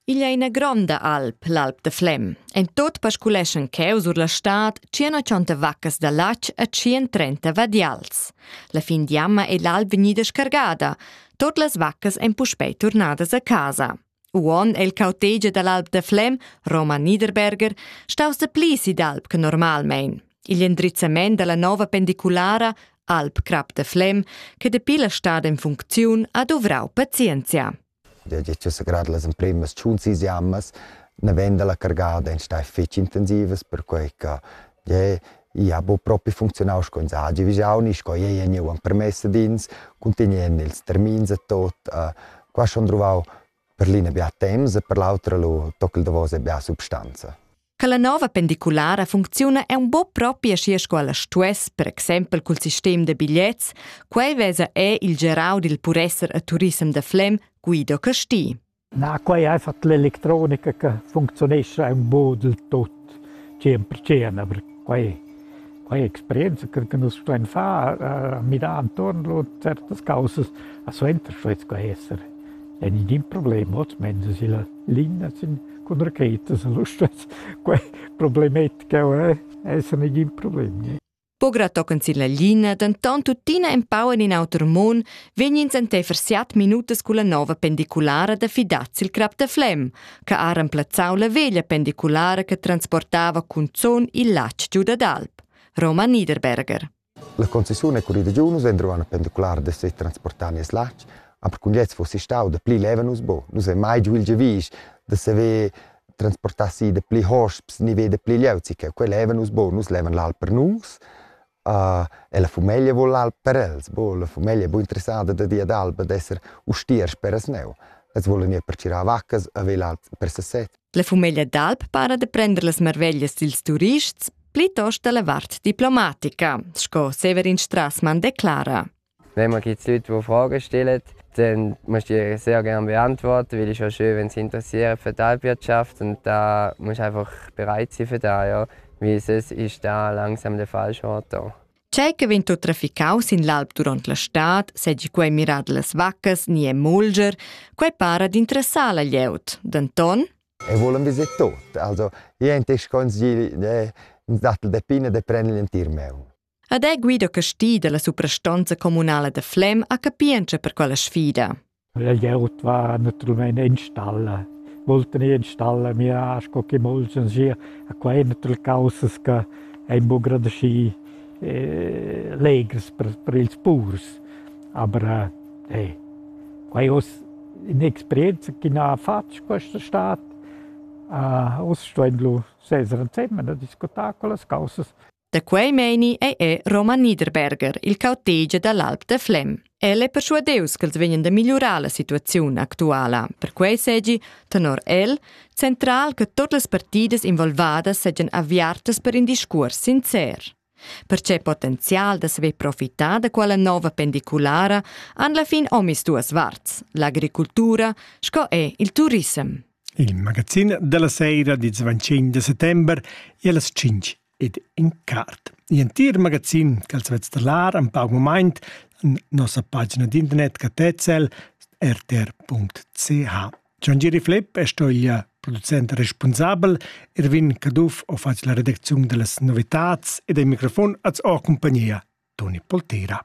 Igl ei ina gronda alp, l'Alp da Flem. En tut pasculeschan cheu sur la stad 180 vaccas da latg e 130 vadials. La fin d'jamma ei l'alp vegnida scargada. Tot las vaccas ein puspei turnadas a casa. Uon è il cautegia dall'Alp da Flem, Roman Niederberger, staus de pli si d'alp che normalmein. Igl endrizzament dalla nova pendiculara Alp Crap de Flem, che dapi la stad en funcziun ha duvrau pazienzia. Dad grad las emprimas tschun sis jammas na vegn la cargada en stai fetg intensivas perquei che jeu ei ha buca propi funzionau sco ins hagi vigiau ni sco ei ha gneu empermess ad ins cuntinuend ils termins e tot. Qua schon druvau per l'ina bia temps e per l'autra lu toc il davos e bia substanza. Che la nova pendiculara funcziuna è un po propi aschi sco ella stuess, per exempel cul sistem da bigliets, quei vesa è il gerau dil puresser a Turisem da Flem, Guido Casti. Na, quei è einfach l'elettronica che funzionesce un po del tot, sempre cena, per quei Quei experienza che nus stuein far, a midar entuorn lur certas caussas, a suenter stuein sco esser en in problem, oz illa linea sin cun rachetas e lu stuess quei problematica eh, esser negin problem. Pogra tochen silla linea, denton tuttina empau en in auter mon, vegnins enteifer siat minutas culla nova pendiculara da fidaz sil crap da Flem. che ha remplazzau la veglia pendiculara che transportava cunzun il latg giu dad alp, Roman Niederberger. La concessione con i degiunus endro una pendicular de se transportar nies latg, aber kun jetzt fosse stau de pli levenus bo, nus è mai giu il gevis de se ve transportar si de pli hosps, ni ve de pli leuzi, che quel levenus bo, nus leven l'alp per nus, e la fumeglia vul alp per els, bo la fumeglia è bu interessada da dir ad alp ad esser ustier speras neu. Els volan ir per tsirar vaccas a vel alp per sasset. La fumeglia d'alp para de prender las marveglias dils turists plitost dalla vart diplomatica, sco Severin Strassmann declara. Wenn man jetzt Leute, die Fragen stellen, dann musst du ihr sehr gerne beantworten, weil es ist ja schön, wenn sie interessieren für die Alpwirtschaft und da musst du einfach bereit sein für das, ja. Weil sonst ist das langsam der falsche Ort da. Tgei che vegn tut traficau sin l'alp duront la stad, segi quei mirar las vaccas ni e mulger, quei para d'interessar la glieud. Denton? E volen vi se tot. Also, io in te sconsigli de datel de pinne de prendere in tir meu. Ed è guido casti dalla suprastonza communala da Flem a capientscha per quella sfida. La glieud va naturalmein installa. Volten installa mira sco che molts sir a qua è natürlich causes che ein bu gerade schi eh, legers per, per ils purs. Aber eh, qua è oss un'esperienza che ha fatto questa estate. Uh, oss stuendo sesere insieme a discutare con le cause. Da quei meini ei è Roman Niederberger il cautegia dall'Alp da Flem. El è persuadeus ch'els vegnan da migliurar la situaziun actuala. Perquei segi, tenor el, central che totes las partidas involvadas segian aviartas per in discuors sincer. Perce potenzial da saver profitar da quella nova pendiculara han la fin omis duas varts, l'agricultura sco è il turisem. Il magazin della sera di 25 de settembre e alle 5 ed in cart. L'entir magazin ch'els vets da lar en pauc moment en nossa pagina d'internet catezzel rtr.ch. Gian Giri Flipp è stoglia producent responsabel, Erwin Caduff ho fatg la redacziun da las novitats ed il microfon az ho compagnia Toni Poltera.